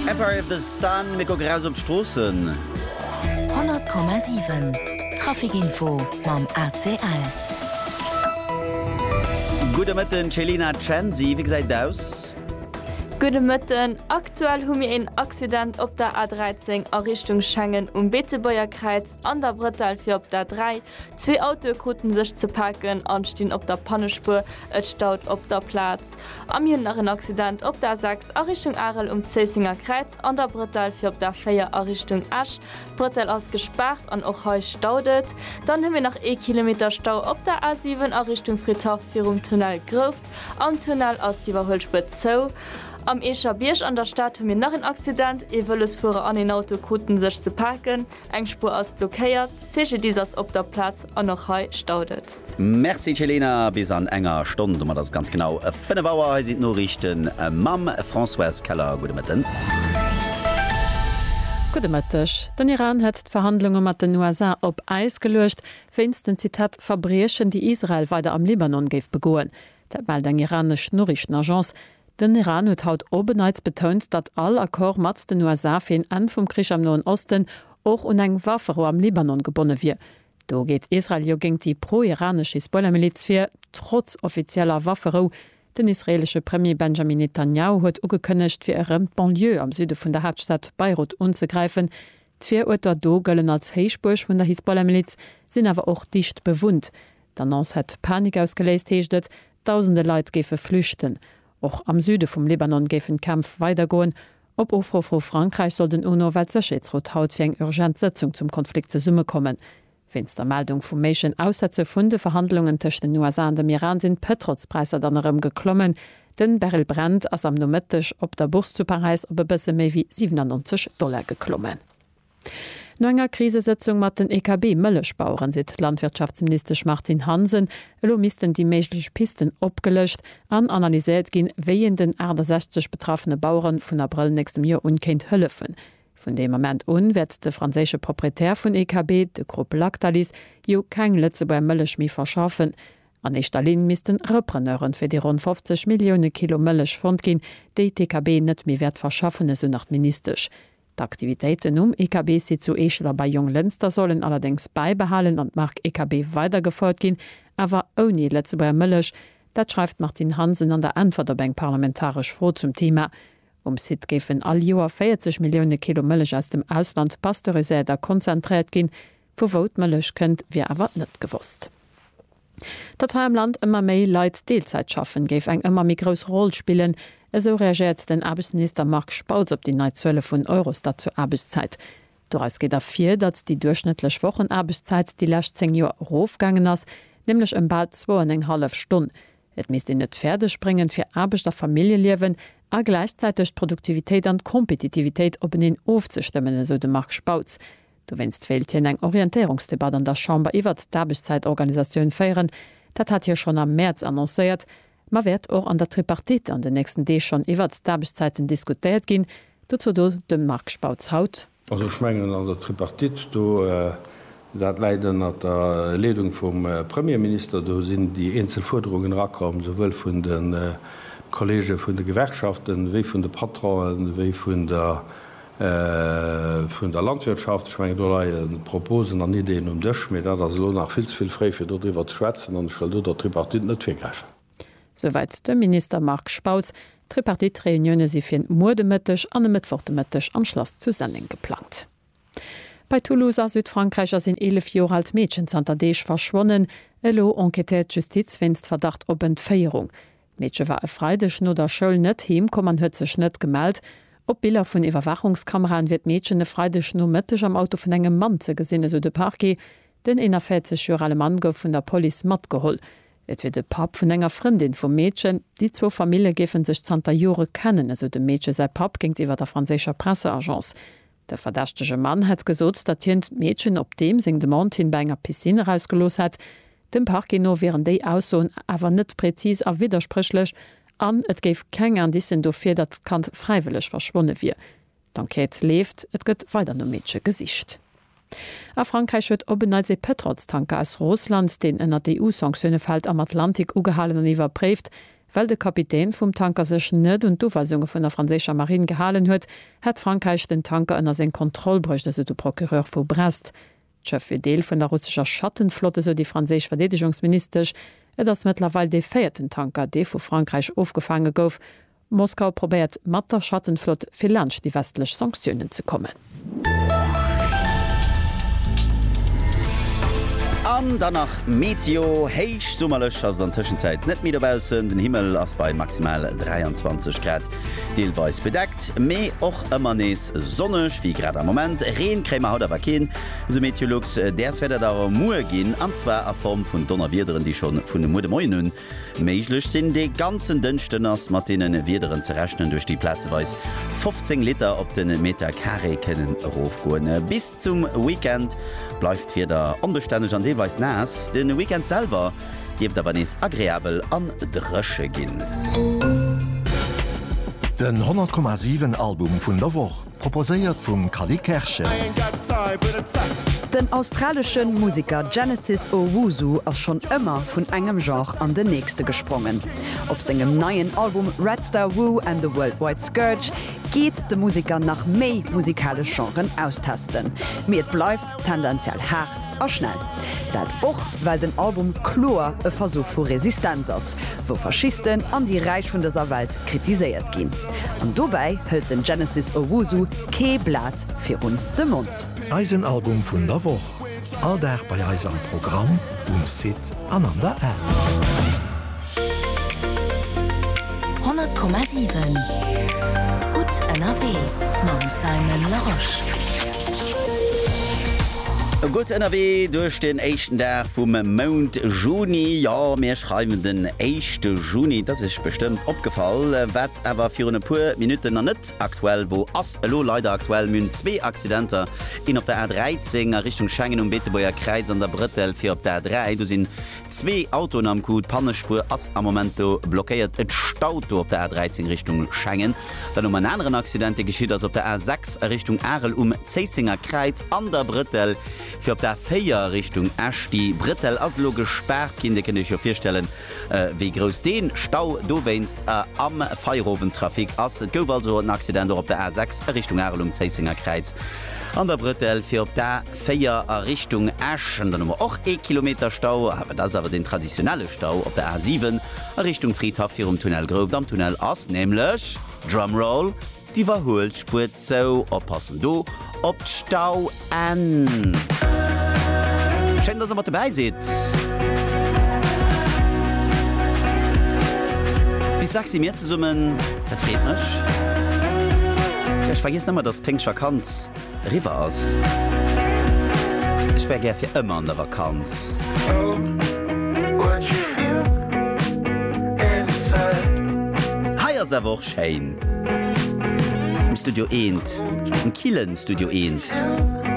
Empire of the Sun, Mir kucken eraus op d'Stroossen. 100,7 Traficinfo mam ACL. Gudde Mëtten Céline a Chancy, wéi gesäit et aus? Gudde Mëtten, Aktuell hu mir een Accident op der A13 a Richtung Schengen um Beetebuerger Kräiz an der Brëttel fir op d'A3. Zwee Autoe kruten sech ze paken an stinn op der Pannespuer, et staut op der Plaz. A mir hunn nach en Accident op der A6 a Richtung Arel um Zéissenger Kräiz an der Brëttel fir op d'A4 a Richtung Esch. D'Brëttel ass gespaart an och hei staut et. Dann hu mir nach ee Kilometer Stau op der A7 a Richtung Fridhaff virum Tunnel Grouft. Am Tunnel ass d'Iwwerhuelspur zou. Am Eecher Bierg an der Stad hu mir nach en Accident, ee Vëlosfuerer an een Auto krute sech ze paken. Eng Spuer ass blockéiert, CGDIS ass op der Plaz an och hei staut et. Merci Celena, bis an enger Stonn, domat ass et ganz genau 5 Auer. Hei sinn d'Noriichte mam Françoise Keller. Gudde Mëtten. Gudde Mëtteg. Den Iran hätt d'Verhandlunge mat den USA op Äis geluecht, wéinst den, Zitat, Verbriechen, déi Israel weider am Libanon géif begoen. Dat mellt eng iranesch Noriichtenagence. Den Iran huet haut op en Neits betount, datt all Accord mat den USA fir een Enn vum Krich am Noen Osten och un eng Waffero am Libanon gebonne wier. Do geet Israel jo géint déi pro-iranesch Hisbollah-Miliz vir, trotz offizieller Wafferou. Den israeelesche Premier Benjamin Netanjahu huet ugekënnegt, fir erëm d'Banlieue am Süde vun der Haaptstad Beirut unzegräifen. D'Viruerter do gëllen als Héichbuerg vun der Hisbollah-Miliz, sinn awer och dicht bewunnt. D'Annonce hätt Panik ausgeléist, heescht et. Dausende Leit géife flüchten. Och am Süde vum Libanon géifen d'Kämpf weidergoen. Op Ofruff vu Frankräich soll den UNO-Weltsécherheetsrot haut fir eng urgent Sëtzung zum Konflikt zesummekommen. Wéinst der Meldung vum méiglechen Aussetze vun de Verhandlungen tëscht den USA an dem Iran sinn d'Pëtrolspräisser dann erëm geklommen. Den Barrel Brent ass am Nomëtteg op der Bourse zu Paräis op e bësse méi wéi 97 Dollar geklommen. No enger Krisesëtzung mat den EKB-Mëllechbaueren seet d'Landwirtschaftsministesch Martine Hansen, elo missten déi méiglech Pisten opgelëscht an analyséiert ginn, wéi een den 68 betraffene Bauere vun Abrëll nächstem Joer un kéint hëllefen. Vun deem Ament un wäert de franséische Proprietär vun EKB, de Grupp Lactalis, jo keng Lëtzebuerger Mëllech méi verschaffen. An éischter Linn misste Repreneure fir déi ronn 50 Millioune Kilo Mëllech fonnt ginn, déi d'EKB net méi wäert verschaffen, esou nach d'Ministesch. D'Aktivitéiten um EKB-Site zu Eechel a bei Jonglënster sollen allerdéngs bäibehalen an d'Mark EKB weidergefouert ginn, awer ouni Lëtzebuerger Mëllech. Dat schreift d'Martine Hansen an der Äntwert op eng parlamentaresch Fro zum Theema. Um Site géifen all Joer 40 Millioune Kilo Mëllech aus dem Ausland pasteuriséiert a konzentréiert ginn. Vu wou d'Mëllech kënnt, wier awer net gewosst. Datt hei am Land ëmmer méi Leit Deelzäit schaffen, géif eng ëmmer méi grouss Roll spillen, esou reagéiert den Aarbechtsminister Marc Spautz op déi nei Zuele vun Eurostat zur Aarbechtszäit. Doraus geet ervir, datt déi duerchschnëttlech Wochenaarbechtszäit déi lescht 10 Joer erofgaangen ass, nämlech ëm bal zwou an eng hallef Stonn. Et misst een et fäerdeg bréngen, fir Aarbecht a Familljeliewen a gläichzäiteg d'Produktivitéit an d'Kompetitivitéit openeen ofzestëmmen, esou de Marc Spautz. Dowéinst wéilt hien eng Orientéierungsdebatt an der Chamber iwwert d'Aarbechtszäitorganisatioun féieren. Dat hat hie schonn am Mäerz annoncéiert. Ma wäert och an der Tripartite an den nächsten Deeg schonn iwwert d'Aarbechtszäiten diskutéiert ginn? Dozou do de Marc Spautz haut. Also ech mengen an der Tripartite do, dat läit ënnert der Leedung vum Premierminister, do sinn déi eenzel Fuerderungen erakomm, souwuel vun de Kolleege vun de Gewerkschaften, wéi vun de Patronen, wéi vun der Vun der Landwirtschaft, ech mengen, do leie Proposen an Ideeën um Dësch, mee dat ass elo nach vill ze vill fréi, fir do driwwer ze schwätzen an ech wëll do der Tripartite net virgräifen. Souwäit de Minister Marc Spautz. D'Tripartite-Reunioune si fir muer de Mëtteg an e Mëttwoch de Mëtteg am Schlass zu Senneng geplangt. Bei Toulouse a Südfrankräich ass een 11 Joer alt Meedchen zanter Deeg verschwonnen. Elo enquêtéiert d'Justiz wéinst Verdacht op Entféierung. D'Meedche war e Freideg no der Schoul net heem komm an huet sech net gemellt. Op Biller vun Iwwerwaachungskameraen wier d'Meedchen e Freideg Nomëtteg am Auto vun engem Mann ze gesinn, esou de Parquet. Den 41 Joer ale Mann gouf vun der Police matgeholl. Et wier de Papp vun enger Frëndin vum Meedchen. Déi zwou Famille géife sech zanter Jore kennen, esou dem Meedche säi Papp géintiwwer der franséischer Presseagence. De verdächtege Mann hätt gesot, datt hien d'Meedchen op deem seng Demande hin bei enger Piscine erausgelooss hätt. Dem Parquet no wieren déi Aussoen awer net prezis a widderspréchlech an et géif keng Indicen dofir, datt d'Kand fräiwëlleg verschwonne wier. D'Enquête leeft, et gëtt weider nom Meedche gesicht. A Frankräich huet op en Neits ee Pëtrolstanker aus Russland, deen ënnert EU-Sanktioune fält, am Atlantik ugehalen an iwwerpréift, Well de Kapitän vum Tanker sech net un d'Uweisunge vun der franséischer Marine gehalen huet, hätt Frankräich den Tanker ënner seng Kontroll bruecht, esou de Procureur vu Brest. D'Schëff wier Deel vun der russescher Schattenflott, esou déi franséisch Verdeedegungsministesch. Et ass mëttlerweil dee véierten Tanker, dee vu Frankräich ofgefaange gouf. Moskau probéiert mat der Schattenflott, fir laanscht déi westlech Sanktiounen ze kommen. An dann nach Meteo, Héich summerlech ass et an Tëschenzäit net méi dobaussen. Den Himmel ass bei maximal 23 Grad deelweis bedeckt, mee och ëmmer nees sonneg, wéi grad am Moment. Reen kréie mer haut awer keen, esou Meteolux. Däers wäert et awer muer ginn, an zwar a Form vun Donnerwiederen, déi scho vun muer de Moien un Méiglech sinn. Dee ganzen Dënschden ass mat deene Wiederen ze rechnen, duerch déi plazeweis 15 Liter op de Meter Carré kënnen erofgoen. Bis zum Weekend bleift d'Wieder onbestänneg an deelweis naass. De Weekend selwer dierft awer nees agreabel an dréche ginn. Den 100,7 Album vun der Woch. Proposéiert vum Cally Kerschen. Den australesche Museker Genesis Owusu ass schonn ëmmer vun engem Genre an den nächste gesprongen. Op sengem neien Album Red Star Woo and the Worldwide Scourge geet de Museker nach méi musikalesch Genren austesten. Mee et bleift tendenziell haart a schnell. Dat och well den Album kloer e Versuch vu Resistenz ass, wou Faschisten an déi Räich vun dëser Welt kritiséiert ginn. An dobäi hëlt den Genesis Owusu kee Blat virun de Mond. Eisen Album vun der Woch, all Dag bei eis am Programm, um Site. An an der Aar. 100,7 Gutt ënnerwee mam Simon Larosche. Gutt ënnerwee duerch den éischten Dag vum Mount Juni. Jo, mir schreiwen den éischte Juni. Et ass iech bestëmmt opgefall, wat awer virun e puer Minutten nach net aktuell wor, ass elo leider aktuell. Mir hunn zwee Accidenter ginn op der A13 a Richtung Schengen um Beetebuerger Kräiz an der Brëttel fir op der A3. Do sinn zwee Autoen am Coup. D'Pannespuer ass am Moment do blockéiert. Et staut do op der A13 Richtung Schengen. Dann hu mer en aneren Accident, dee geschitt ass op der A6 a Richtung Arel um Zéissenger Kräiz an der Brëttel fir op der A4 Richtung Esch. Déi Brëttel ass elo gespaart ginn. Dir kënnt Iech jo virstellen, wéi grouss dee Stau dowéinst am Feierowendtrafic ass. Et gouf also en Accident och op der A 6 a Richtung Arel um Zéissenger Kräiz an der Brëttel fir op d'A 4 a Richtung Esch. Dann hu mer och ee Kilometer Stau, awer dat ass awer deen traditionelle Stau op der A 7 a Richtung Fridhaff virum Tunnel Grouft. Am Tunnel ass nämlech, Drumroll, D'Iwwerhuelspuer zou, oppassen do op d'Stauenn. Schéin dass der mat dobäi sidd. Bis sechs si mir zesummen, dat freet mech. Ech vergiessen ëmmer dass Péngschtvakanz Riwwer ass. Ech wär gär fir ëmmer an der Vakanz. Hei ass awer och schéin. Am Studio eent, am killen Studio eent.